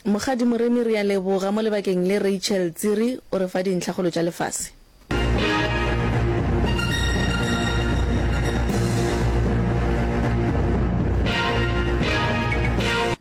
Mokgadi Moremi re a leboga mo lebakeng le Rachel Tsiri o re fa dintlha kgolo tša lefase.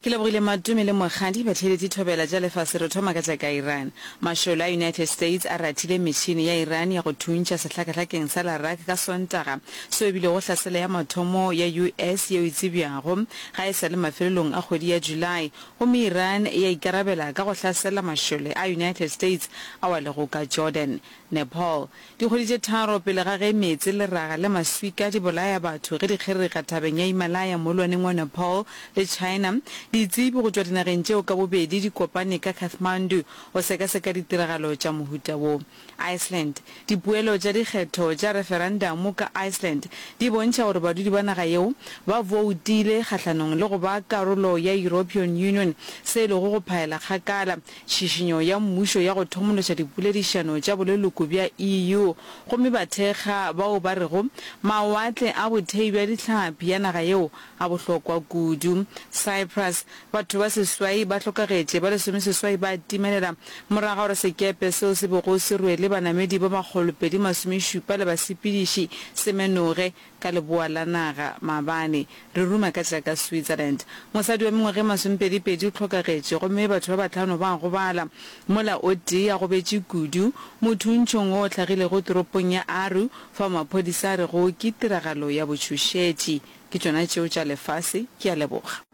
Ke lebogile Matumi le Mokgadi. Batheeletši thobela tša lefase re thoma ka tša ka Iran. Mašole a United States a rathile metšhini ya Iran ya go thuntšha sehlakahlakeng sa Larak ka Sontaga, seo e bilego hlaselo ya mathomo ya US yeo e tsebjago. Ga e sa le mafelelong a kgwedi ya July, gomme Iran ya ikarabela ka go hlasela mašole a United States ao a lego ka Jordan. Nepal. Dikgwedi tše tharo pele ga ge meetse, leraga le maswika di bolaya batho ge di kgerega thabeng ya Himalaya moolwaneng wa Nepal le China, ditsebi go tšwa dinageng tšeo ka bobedi di kopane ka Kathmandu go sekaseka ditiragalo tša mohuta wo. Iceland. Dipoelo tša dikgetho tša referandamu ka Iceland di bontšha gore badudi ba naga yeo ba boutile kgahlanong le go ba karolo ya European Union, se e lego go phaela kgakala tšhišinyo ya mmušo ya go thomološa dipoledišano tša boleloko bja EU, gomme ba thekga bao ba rego mawatle a bothei bja dihlapi ya naga yeo A bohlokwa kudu. Cyprus, Batho ba seswai ba hlokagetše, ba lesomeseswai ba timelela morago ga gore sekepe seo se bego se rwele banamedi ba makgolopedi masomešupa le basepediši se menoge ka leboa la naga maabane. Re ruma ka tša ka Switzerland. Mosadi wa mengwaga e masomepedipedi o hlokagetše gomme batho ba bahlano ba gobala. Mola o tee a gobetše kudu. Motho o ntšhong o hlagilego toropong ya Aru, fao maphodisa a rego ke tiragalo ya botšhošetši. Ke tšona tšeo tša lefase. Ke a leboga.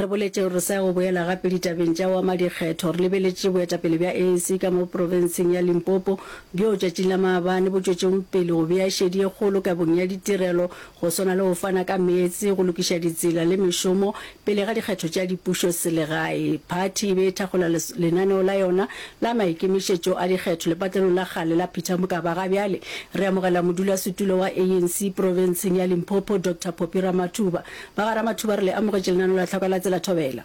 Re boletše gore re sa ya go boela gape ditabeng tša go ama dikgetho. Re lebeletše boetapele bja ANC ka mo profenseng ya Limpopo bjoo tšatšing la maabane bo tšwetšego pele go bea šedi ye kgolo kabong ya ditirelo go swana le go fana ka meetse, go lokiša ditsela le mešomo Pele ga dikgetho tša dipušo selegae, phathi e be e thakgola lenaneo la yona la maikemišetšo a dikgetho lepatlelong la kgale la Peter Mokaba. Ga bjale re amogela modulasetulo wa ANC profenseng ya Limpopo, Doctor Poppy Ramathuba. Ba ga Ramathuba re le amogetše lenaneo la Tlhoka la Tsela Thobela.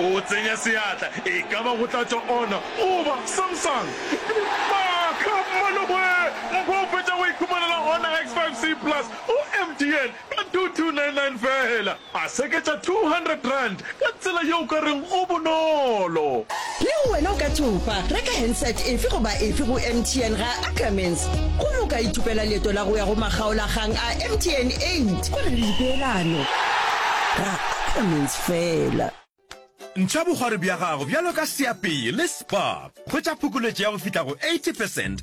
O tsenya seatla, e ka ba go tla tšwa ona goba Samsung. Maaka! Maloboe! Mpho o fetša go ikhumanela Honor X5C Plus go MTN ka 2299 feela. A seketša R200 ka tsela yeo o ka reng go bonolo. Le go wena o ka thopa, reka handset efe goba efe go MTN ga Ackermans gomme o ka ithopela leeto la go ya go makgaolakgang a MTN 8 go na le dipeelano. Ra Ackermans fela. Ntšha bogwari bja gago bjalo ka seapee le spa. Hwetša phokoletšo ya go fihla go 80 percent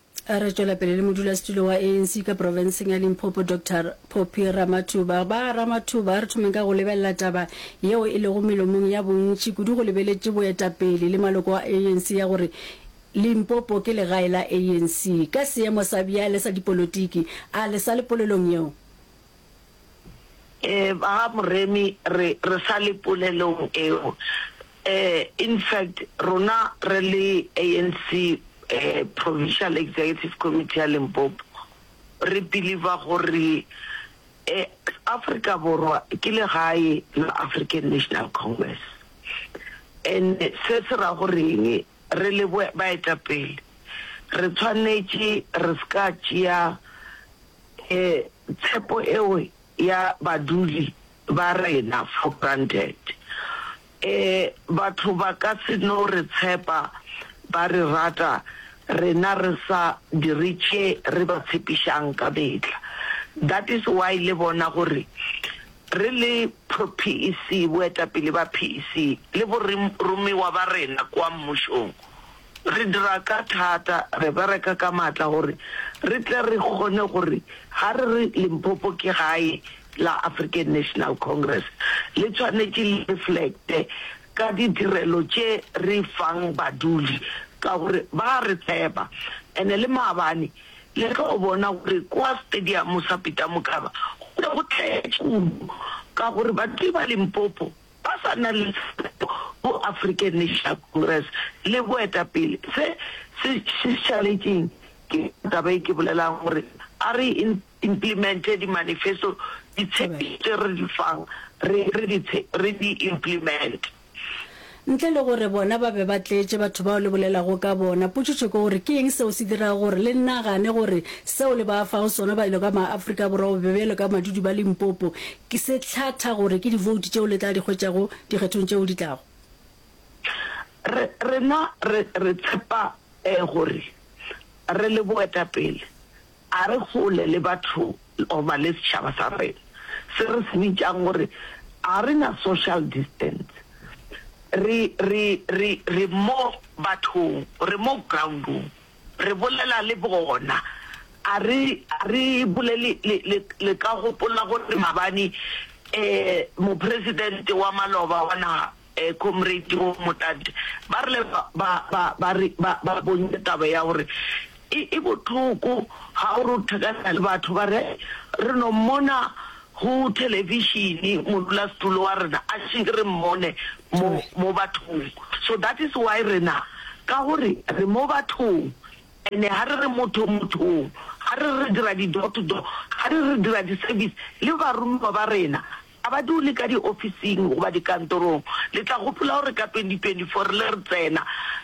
Re tšwela pele le modulasetulo wa ANC ka profenseng ya Limpopo Dr Phophi Ramathuba. Ba Ramathuba, re thomeng ka go lebelela taba yeo e lego melomong ya bontši kudu go lebeletše boetapele le maloko a ANC ya gore Limpopo ke legae la ANC. Ka seemo sa bjale sa dipolotiki, a le sa le polelong yeo? Eh ba ga Moremi re re sa le polelong eo. Eh in fact rona re le ANC eh Provincial Executive Committee ya Limpopo re believe-a gore eh Afrika Borwa ke legae la African National Congress. And se se ra gore eng re le baetapele re tshwanetše re se ka tšea Ke tshepo eo ya badudi ba rena for granted. E, batho ba ka se no re tshepa, ba re rata, rena re sa dire tše re ba tshepišang ka mehla. That is why le bona gore re le pro-PEC, boetapele ba PEC, le boromiwa ba rena kua mmušong, Re dira ka thata, re bereka ka maatla gore re tle re kgone gore ga re re Limpopo ke gae la African National Congress, le tshwanetše le reflecte ka ditirelo tše re fang badudi ka gore ba a re tshepa. And le maabane le tlo bona gore kua stadium sa Peter Mokaba go be go tletše kudu ka gore badudi ba Limpopo ba sa na le tshepo go African National Congress le boetapele. Se se šišaletšeng ke taba e ke bolelago gore a re implemente di-manifesto, ditshepišo tše re di fang re di implemente. Ntle le gore bona ba be ba tletše batho bao le bolelago ka bona, potšotšo ke gore ke eng seo se dirago gore le nagane gore seo le ba fago sona ba e lo ka ma-Afrika Borwa gobe bjalo ka madudi ba Limpopo Ke se hlatha gore ke divoutu tšeo le tla di hwetšago dikgethong tšeo di tlago. Re, rena re, re tshepa ee gore re le boetapele a re hole le batho goba le setšhaba sa rena se re se bitšang gore a re na social distance. Re, re, re, re mo bathong, re mo groundong. Re bolela le bona. A re, a re bule le, le, le, le ka gopola gore mabane eh, mopresidente wa maloba wa naga eh, Comrade Roo Motlatše, ba rile ba, ba, ba, ba, re, ba, ba bontša taba ya gore e, e bohloko ga o re o thekana le batho, ba re, re no mmona Go thelebišene, Modulasetulo wa rena a šenke re mmone mo, mo bathong. So that is why rena, ka gore re mo bathong, ene ga re re motho mothong, ga re re re dira di-door to door, ga re re re dira di-service, le baromiwa ba rena ga ba dule ka diofising goba dikantorong. Le tla gopola gore ka 2024 re le re tsena,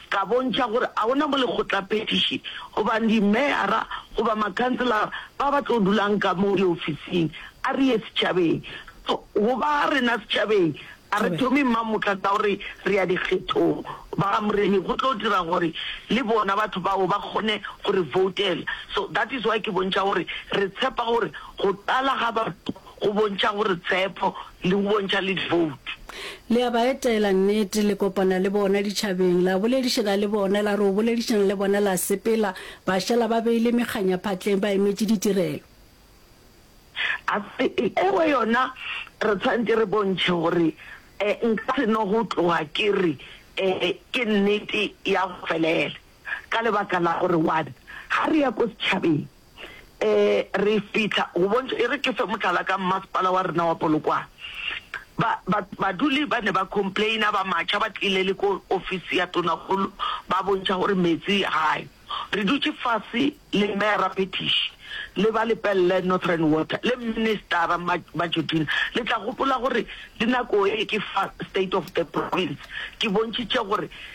ka bontšha gore ga go na mo lekgotlaphethiši goba dimeyara goba makhanselara ba ba tlo dulang ka mo diofising, a re ye setšhabeng. So, go ba rena setšhabeng, a re thome mmamoka ka gore re ya dikgethong. Ba ga Moremi go tlo dira gore le bona batho bao ba kgone go re voutela. So that is why ke bontšha gore re tshepa gore go tlala ga batho Go bontšha gore tshepo le go bontšha le diboutu. Le a ba etela, nnete, le kopana le bona ditšhabeng, la boledišana le bona, la re o boledišana le bona, la sepela, ba šala ba beile mekganya phatleng ba emetše ditirelo. A re, Ewe yona, re tshwanetše re bontšhe gore e, nka se no go tloga ke re e, ke nnete ya go felela, ka lebaka la gore, one, ga re ya ko setšhabeng. um re fitlha go bontšha e re ke fe motlala ka mmasepala wa rena wa polokwane baduli ba ne ba complaina ba matšha ba tlile le ko office ya tonagolo ba bontšha gore metsi gae re dutše fase le mera petish le ba lepelele northern water le ministera majodina le tla gopola gore dinako e ke fa state of the province ke bontšhitše gore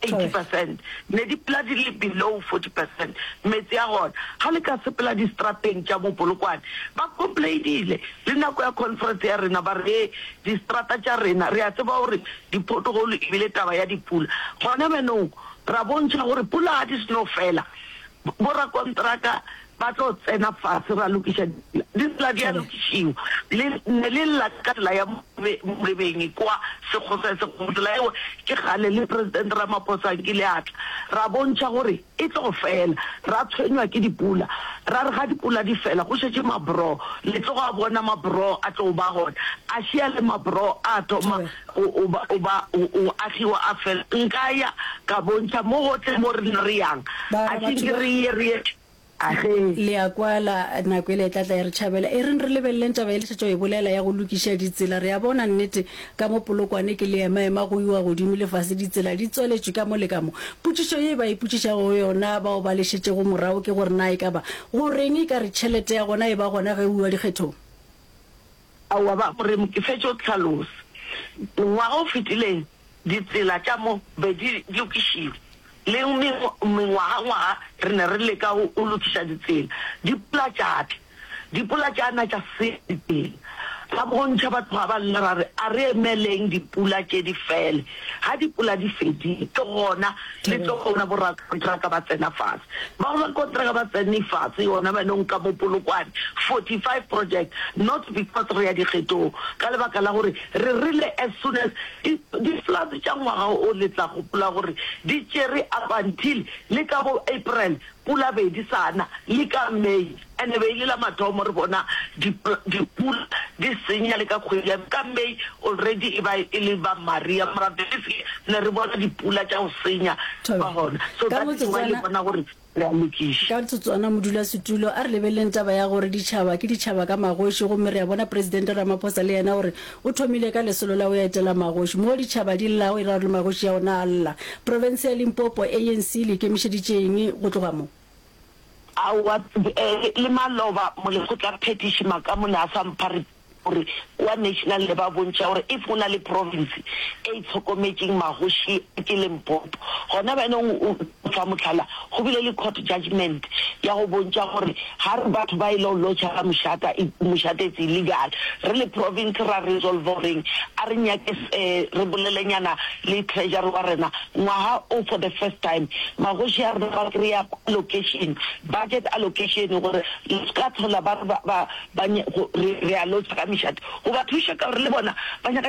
80 percent, mme dipula di le below 40 percent, meetse a gona ga le ka sepela distrapeng tša mo Polokwane, ba complainile le nako ya conference ya rena ba re distrata tša rena re a tseba gore di pothole ebile taba ya dipula gona bjanong ra bontšha gore pula ga di seno fela bo rakontraka ba tlo tsena fase ra lokiša ditsela di sela di a lokišiwa le ne le lla ka tsela ya molebeng kwa sekgoswa se go tsela eo ke kgale le president ramaphosa ke le atla ra bontšha gore e tlo fela ra tshwenywa ke dipula ra re ga dipula di fela go šetše mabro le tlo go a bona mabro a tlo ba gona a šia le mabro a thoma O ba, o ba, o, o agiwa a fela. Nka ya ka bontšha mo gohle mo rena re yang. Ba re, Akhing Batho ke ba. re ye, re ye. Age. Le a kwala, nako yela e tla tla ya re tšhabela. E reng re lebeleleng taba ye le šetša go e bolela ya go lokiša ditsela. Re a bona nnete ka mo Polokwane ke leemaema go iwa godimo le fase, ditsela di tswaletšwe ka mo le ka mo. Potšišo ye ba ipotšišago yona bao ba le šetšego morago ke gore na e ka ba go reng e ka re tšhelete ya gona e ba gona ge o iwa dikgethong? Aowa, ba mo remo, ke fetše go hlalosa. Ngwaga o fetileng ditsela tša mo be di lokišilwe, le mengwagangwaga re ne re leka go lokiša ditsela. Dipula tša tla, dipula tša na tša senya ditsela. Ra bontšha, ba tloga ba lla, ra re, A re emeleng dipula tše di fele. Ge dipula di fedile, ke gona Le tlo founa borakontraka ba tsena fase. Bao ba kontraka ba tsenne fase yona ba nong ka mo Polokwane, 45 project, not because re ya dikgetong, ka lebaka la gore re rile as soon as di, di floods tša ngwaga o le tla gopola gore di tšere up until le ka bo April pula be di sa na, le ka May. E ne be e le la mathomo re bona dipula di senya le ka kgwedi ya ka May already e ba e le ba Maria mara believe me ne re bona dipula tša go senya ba gona so that is why le bona gore re a lokiša. Ka tsotswana modulasetulo a re lebeleleng taba ya gore ditšhaba ke ditšhaba ka magoši gomme re a bona presidente Ramaphosa le yena gore o thomile ka lesolo la go ya etela magoši moo ditšhaba di llago e ra gore le magoši a ona a lla profense ya Limpopo anc le ikemišeditše eng go tloga mo Aowa, le maloba molekgotlaphethiši makamone a sa mpha report gore kua National ne ba bontšha gore if go na le province e itlhokometšeng magoši ke Limpopo. Gona bjanong o fa mohlala, go bile le court judgement ya go bontšha gore ga re batho ba e lo lodger ka mošata, mošata it's illegal. Re le province ra resolver goreng a re nyake re bolelenyana le treasury wa rena, Ngwaga o for the first time magoši a rena ba kry-a allocation, budget allocation gore re se ka tlhola ba re ba, ba, ba, re, re a lotšha ka mešate go ba thuša ka gore le bona ba nyaka.